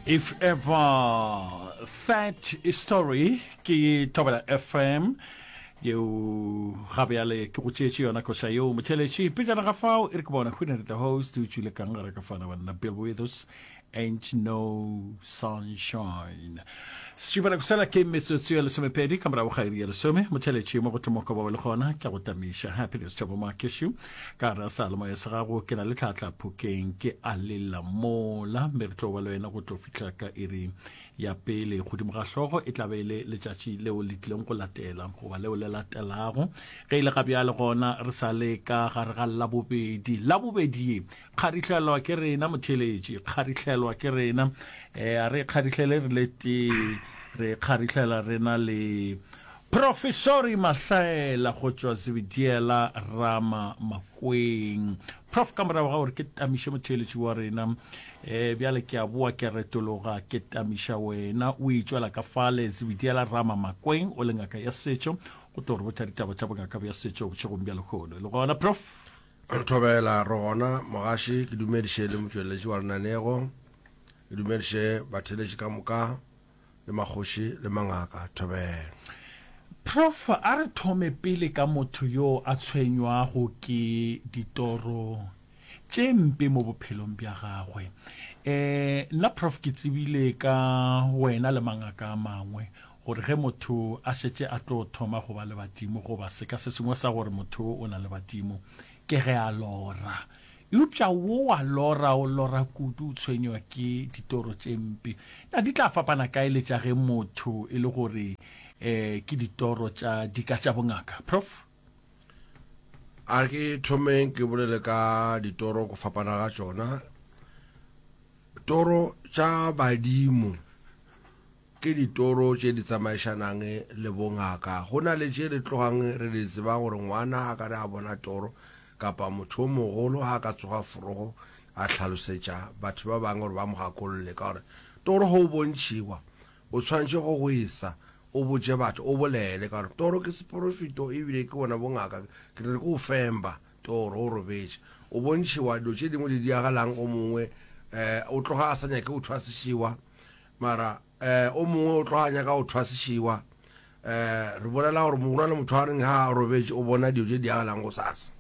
If ever that story ke Thobela FM yeo gabe yale ke go tšeetše yona koša yeo motheletši pejana ga fao e re ke bona hwinere the host o tšwile kang gare ka fana banna bill withers ain't no sunshine setšibana kosela ke metsotso ya lesomepedi ka morago ga iri ya lesome motheletši mo go tlomoka ba le gona ke go tamiša happiness tšabo makeshu ka gare a sa le moya se gago ke na le tlhatlha phokeng ke a lela mola mme re tlo ba le wena go tlo fihla ka iri ya pele godimo ga hlogo e tlabe e le letšatši leo le tlileng go latela goba leo le latelago ge e le ga bjale gona re sa le ka gare ga labobedi labobedi ye kgarihlelwa ke rena motheletši kgarihlelwa ke rena um a re kgarihlele re le tee re kgarihlelwa rena le Profesori Mahlaela go tšwa Zebediela Rama Makweng. Prof ka morago ga gore ke tamiše motheeletši wa rena, e bjale ke a boa ke retologa ke tamiša wena. O itšwela ka fale, Zebediela Rama Makweng o le ngaka ya setšo, o tlo re botša ditaba tša bongaka bja setšo bošegong bja lehono. Le gona Prof? Re thobela re gona mogaši, ke dumediše le motšweletši wa lenanego, ke dumediše batheeletši ka moka. le makgoši le mangaka. Thobela. Prof, a re thome pele ka motho yo a tshwenywago ke ditoro tše mpe mo bophelong bja gagwe. E, nna Prof ke tsebile ka wena le mangaka a mangwe gore ge motho a šetše a tlo thoma go ba le badimo goba seka se sengwe sa gore motho o na le badimo, ke ge a lora. Eupša wo wa lora o lora kudu, o tshwenywa ke ditoro tše mpe. Na di tla fapana kae le tša ge motho e le gore e ke ditoro tša dika tša bongaka? Prof. A ke thomeng ke bolele ka ditoro go fapana ga tšona. Toro tša badimo. Ke ditoro tše di tsamaišanang le bongaka. Go na le tše re tlogang re di tseba gore ngwana ga ka re a bona toro kapa motho yo mogolo ga a ka tsoga forogo a hlalosetša batho ba bangwe gore ba mo gakolole ka gore toro ga o bontšhiwa, o tshwanetše go gwesa o botše batho, o bolele ka gore toro ke seporofeto e bile ke bona bongaka. Ke re ke o femba toro o robetše, o bontšhiwa dilo tše dingwe di diagalang go mongwe, o tloga a sa nyake go thwasišiwa. Mara eh, o mongwe o tlo a nyaka go thwa sešewa. Eh, re bolela gore mogolo le motho a reng ha a robetše o bona dio tše di agalang go sasa.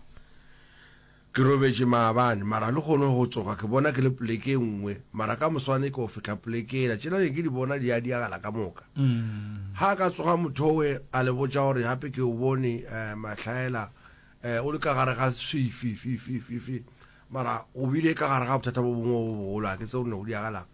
Ke robetše maabane, mara le kgone go tsoga ke bona ke le poleke e nngwe, mara ka moswane ke go fihla poleke ela. Tšena ne ke di bona di a diagala ka moka. Mm. Ha ka tsoga motho we a le botša gore hape ke o bone eh, mahlaela eh, o le ka gare ga swifi fi fi fi fi mara o bile ka gare ga bothata bo bongwe bo bogolo a ke tseo ne o diagalang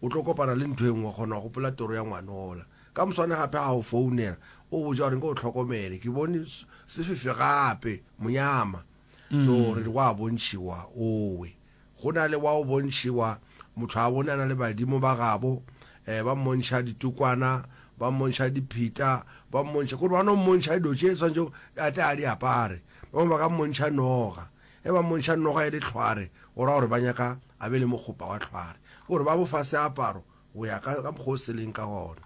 O tlo kopana le ntho e nngwe, gona wa gopola toro ya ngwano ola. Ka moswane gape ga a go founela, o botša gore nke o tlhokomele, ke bone sefifi gape, monyama. So re re wa bontšhiwa owe. Go na le wa o bontšhiwa, motho a bone a na le badimo ba gabo, um ba mmontšha ditukwana, ba mmontšha diphita, ba mmontšha, kore ba no mmontšha dilo tše swanetšego a tle a di apare. Ba bangwe ba ka mmontšha noga. Ge ba mmontšha noga ya dihlware, go ra gore ba nyaka a be le mokgopa wa hlware. Ke gore ba bo fa seaparo go ya ka mokgwa o se leng ka gona.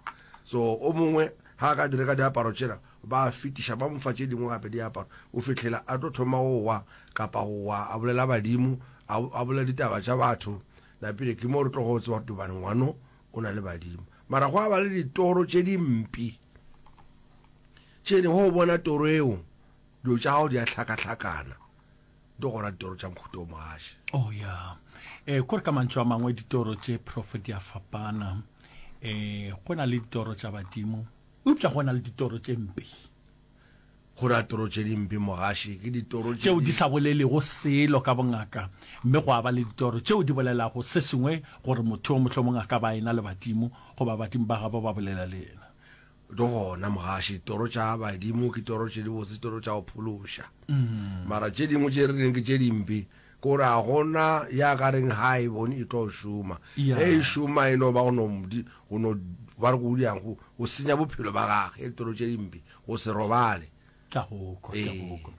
So o mongwe ga a ka di reka diaparo tšela, ba a fetiša ba mo fa tše dingwe gape diaparo go fihlela a tlo thoma go wa kapa go wa a bolela badimo, a, a bolela ditaba tša batho. Napile ke mo re tlogo go tseba gore Tobane ngwano o na le badimo. Mara gwa ba le ditoro tše dimpi tše ne, ge o bona toro eo, Dilo tša gago di a hlakahlakana. Di gona ditoro tša nkhuto o mogaši. Oh ya. Eh, kore ka mantšu a mangwe ditoro tše prof di a fapana. Eh, go na le ditoro tša badimo. Eupša go na le ditoro tše mpe. Go na toro tše di mpe mogaši, ke ditoro tše. Tšeo di sa bolelego selo ka bongaka. Mme go a ba le ditoro tšeo di bolelago se sengwe gore motho yo mohlomong a ka ba a ena le badimo, goba badimo ba gabo ba bolela le yena. le gona mogaši ditoro tša badimo ke toro tše di botse ditoro tša go phološa mm. mara tše dingwe tše re leng ke tše dimpe ke gore ga gona ya ka reng ga e bone e tlo šoma yeah. e e šoma e no ba go no ba re go diang go go senya bophelo ba gage e ditoro tše dimpe go se robale ka goko ka goko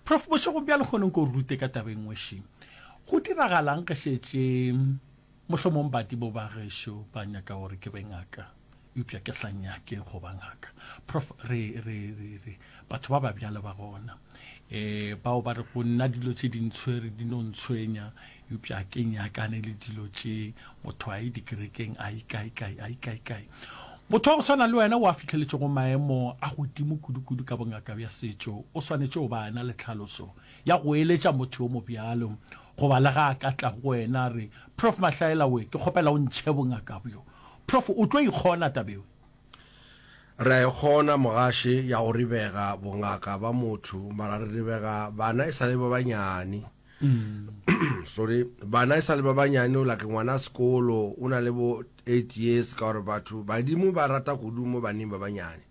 prof bošego bja le kgoneng ko rute ka tabeng ngwešeng go diragalang ge šetše Mohlomong badibo ba gešo ba nyaka gore ke be ngaka, eupša ke sa nyake go ba ngaka. Prof, re, re, re, re, batho ba ba bjalo ba gona, e, bao ba re go nna dilo tše dintshwere di no ntshwenya, eupša ke nyakane le dilo tše, motho a ye dikerekeng, a ye kae-kae, a ye kae-kae. Motho wa go swana le wena o a fihleletšego maemo a godimo kudu-kudu ka bongaka bja setšo, o swanetše go ba na le tlhaloso ya go eletša motho yo mobjalo. Goba le ge a ka tla go wena a re, Prof. Mahlaela we, ke kgopela o ntšhe bongaka bjo. Prof. O tlo e kgona taba yeo? Re a e kgona, mogaše, ya go ribega bongaka ba motho, mara re ribega bana e sa le ba banyane. Sorry, bana e sa le ba banyane, like ngwana sekolo, o na le bo eight years, ka gore batho, badimo ba rata kudu mo baneng ba banyane.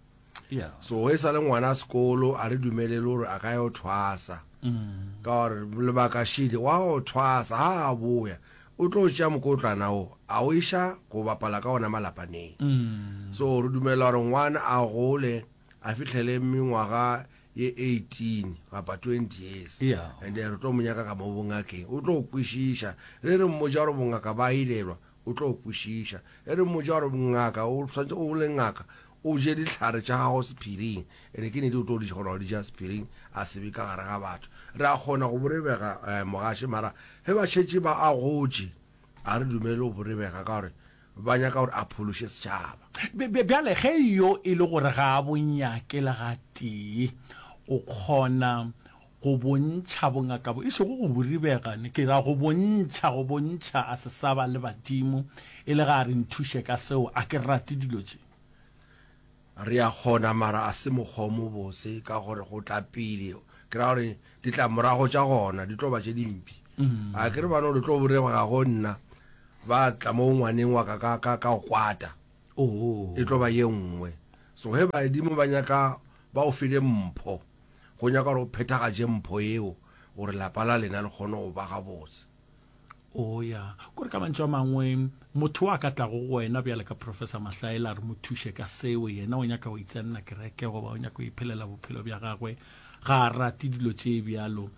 yeah. so e sa le ngwana sekolo a re dumelele gore a ka yo thwasa mm. ka gore lebaka shidi wa go thwasa ga a boya o tlo tšea mokotlana o a o iša go bapala ka ona malapaneng mm. so re dumela gore ngwana a gole a fitlhele mengwaga ye 18 kapa 20 years yeah. and re tlo monyaka ka mo bongakeng o tlo kwešiša re re mmoja gore bongaka ba ilelwa O tlo go kwešiša. E re mmotša gore, Ngaka, o swanetše o le ngaka, o je dihlare tša gago sephiring. Ene ke nete o tlo di kgona go di ja sephiring, a se be ka gare ga batho. Re a kgona go borebega, um mogaše, mara ge ba šetše ba a gotše, ga re dumele go borebega ka gore ba nyaka gore a phološe setšhaba. Bjale, ge yo e le gore ga a bo nyake le gatee, o kgona Go bontšha bongaka bo e sego go buribega, ne ke ra go bontšha, go bontšha a se sa ba le badimo, e le ge a re nthuše ka seo. A ke rate dilo tše. Re a kgona, mara a se mokgwa o mobotse, ka gore go tla pele, ke ra gore ditlamorago tša gona di tlo ba tše dimpe. A ke re ba no le tlo burebega go nna, ba tla mo ngwaneng wa ka ka, ka, ka go kwata. E tlo ba ye nngwe. So ge badimo ba nyaka ba go file mpho, Go nyaka gore o phethagatše mpho yeo gore lapa la lena le kgone go ba gabotse. Oya, kore ka mantšu a mangwe, motho wo a ka tlago go wena bjale ka Professor Mahlaela a re mo thuše ka seo, yena o nyaka go itsenna kereke goba o nyaka go iphelela bophelo bja gagwe, ga a rate dilo tše bjalo.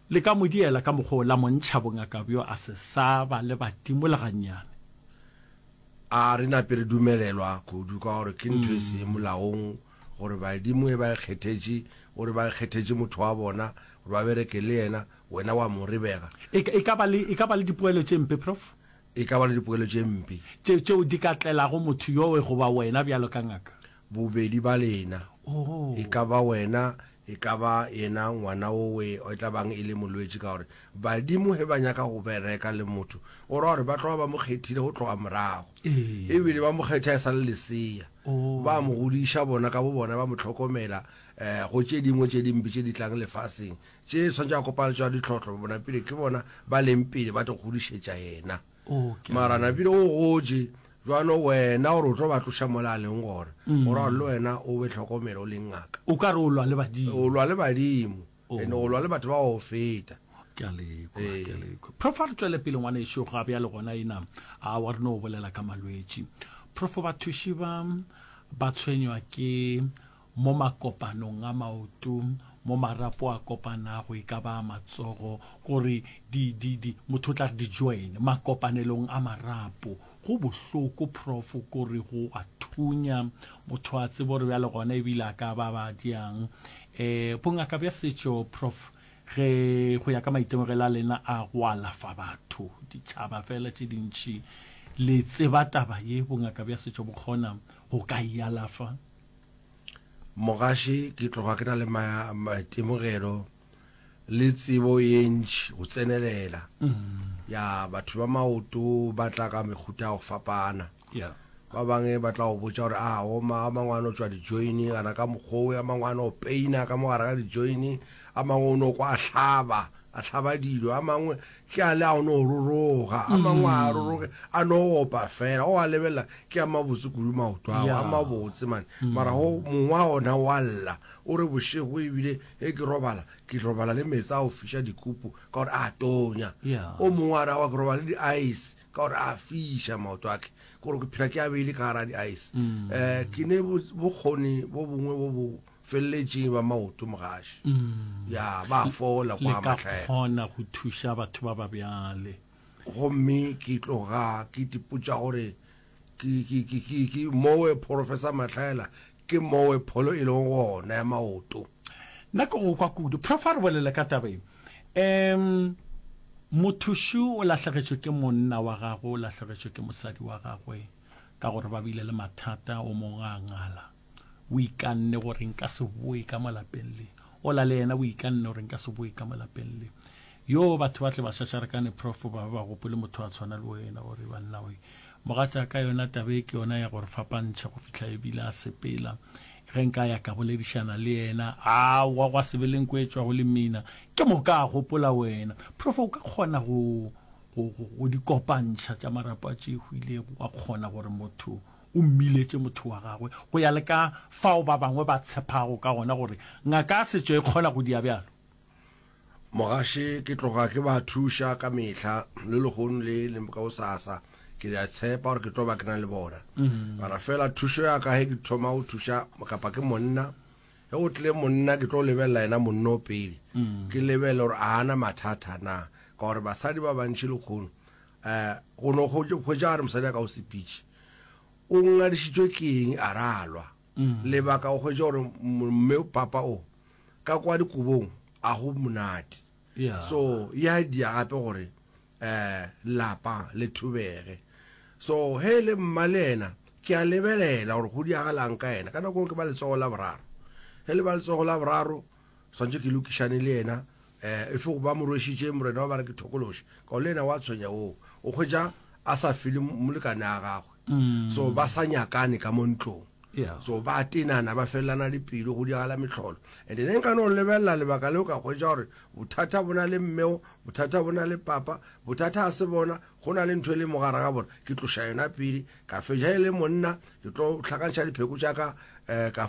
Le ka mo diela ka mokgwa wo, la mo ntšha bongaka bjo, a se sa ba le badimo le gannyane. A re nape re dumelelwa kudu ka gore ke ntho e se molaong. gore badimo e ba e kgethetše, o re ba e kgethetše motho wa bona gore ba bereke le yena, wena wa mo rebega. E, e, ka ba le, e ka ba le dipoelo tše mpe, Prof? E ka ba le dipoelo tše mpe. Tše, tšeo di ka tlelago motho yowe goba wena bjalo ka ngaka. Bobedi ba lena. Oh. E ka ba wena E ka ba yena ngwana owe e tla bang e le molwetši, ka gore badimo ge ba nyaka go bereka le motho, go ra gore ba tloga ba mo kgethile go tloga morago, e bile ba mo kgetha e sa le lesea, ba mo godiša bona ka bo bona, ba mo hlokomela um go tše dingwe tše dimpe tše di tlang lefaseng, tše swanetše a kopana le tšona ditlhohlo, bona pele ke bona ba leng pele ba tlo godišetša yena. mara napile o gotše jwano wena gore o tlo ba tloša mola a leng gona mm. gore le wena o be tlhokomelo o leng ngaka o ka re o lwa le badimo o lwa le badimo oh. and o lwa le batho ba go feta ee. profo re tswele pele ngwane ešo ga bja le gona ena a wa reno o bolela ka malwetši profo bathuši ba ba tshwenywa ke mo makopanong a maoto, mo marapo a kopanago e ka ba a matsogo, gore di, di, di, motho o tla re di-join, makopanelong a marapo. Go bohloko, prof, gore go a thunya, motho a tsebe gore bjale gona ebile a ka ba ba diang. Um bongaka bja setšo, prof, ge go ya ka maitemogelo a lena a go alafa batho, ditšhaba fela tše dintši, le tseba taba ye, bongaka bja setšo bo kgona go ka e alafa? Mogaši ke tloga ke na le maitemogelo le tsebo ye ntši go tsenelela mm-hmm. ya batho ba maoto ba tla ka mehuta ya go fapana ba bangwe ba tla go botsa gore a oma a mangwe a no tswa dijoini kana ka mokgowe a mangwe a no peina ka mogare ga dijoini a mangwe o no kwa a hlaba a hlaba dilo a mangwe Ke a le a o no roroga, a mangwe a a roroge, a no opa fela, o a lebelela ke a mabotse kudu maoto ao, a mabotse mane, mara go mongwe a ona wa lla, o re bošego ebile ge ke robala, ke robala le meetse a go fiša dikupu ka gore a tonya, o mongwe a re aowa ke robala le di-ice ka gore a fiša maoto a ke, ke gore ke phela ke a beile ka gara di-ice. Um ke ne bokgoni bo bongwe bo bo feleletše ba maoto mogaši mm. ya ba fola kwa matlhaela kgona go thuša batho ba ba bjale gomme ke tloga ke tipotša gore ke mowe professor matlhaela ke mowe pholo e leng gona ya maoto nna ke go kwa kudu prof a re bolele ka taba e um mothuši o lahlegetšwe ke monna wa gagwe o lahlegetšwe ke mosadi wa gagwe ka gore ba bile le mathata o mongwe a ngala o ikanne gore nka se boe ka malapeng le ola le yena o ikanne gore nka se boe ka malapeng le yo batho ba tle ba šašarekane profo ba ba gopole motho a tshwana le wena gore banna oe mogatša ka yona tabe ke yona ya gore fapantšha go fihla ebile a sepela ge nka ya ka boledišana le yena a wa gwa sebeleng ko etswa go le mina ke mo ka gopola wena profo o ka kgona go go di kopantšha tša marapo a tšehwilego wa kgona gore motho o mmiletše motho wa gagwe go ya le ka fao ba bangwe ba tshepago ka gona gore ngaka ya setšo e kgona go dia bjalo. Mogaše ke tloga ke ba thuša ka mehla, le lehono le le gosasa ke ya tshepa gore ke tlo ba ke na le bona. Mara fela thušo ya ka ge ke thoma go thuša kapa ke monna, ge go tlile monna ke tlo lebelela yena monna o pele, ke lebelele gore a na mathata na, ka gore basadi ba bantši lehono um go no hwetša a re mosadi a ka o sepitše o ngadišitšwe ke eng a ra lwa mm. lebaka o hwetša gore mme papa o ka kwa dikobong a go monate so ya dia gape gore um lapa le thubege so he le mma le ena ke a lebelela gore go diagalang ka ena ka nako ke ba letsogo la boraro he le ba letsogo la boraro swantse ke lokišane le yena um e fe go ba mo rwešitše morena wa ba re ke thokološe kao le yena wa tshwenya oo o kgwetša a sa fele molekane a gagwe mm. so ba sa nyakane ka mo ntlong yeah. so ba tenana ba felelana le pelo go diagala metlholo and ne nka no lebelela lebaka leo ka kgwetsa gore bothata bona le mmeo bothata bona le papa bothata a se bona go na le ntho e le mogara ga bona ke tloša yona pele ka feja e le monna ke tlo tlhakantšha dipheko tša ka um ka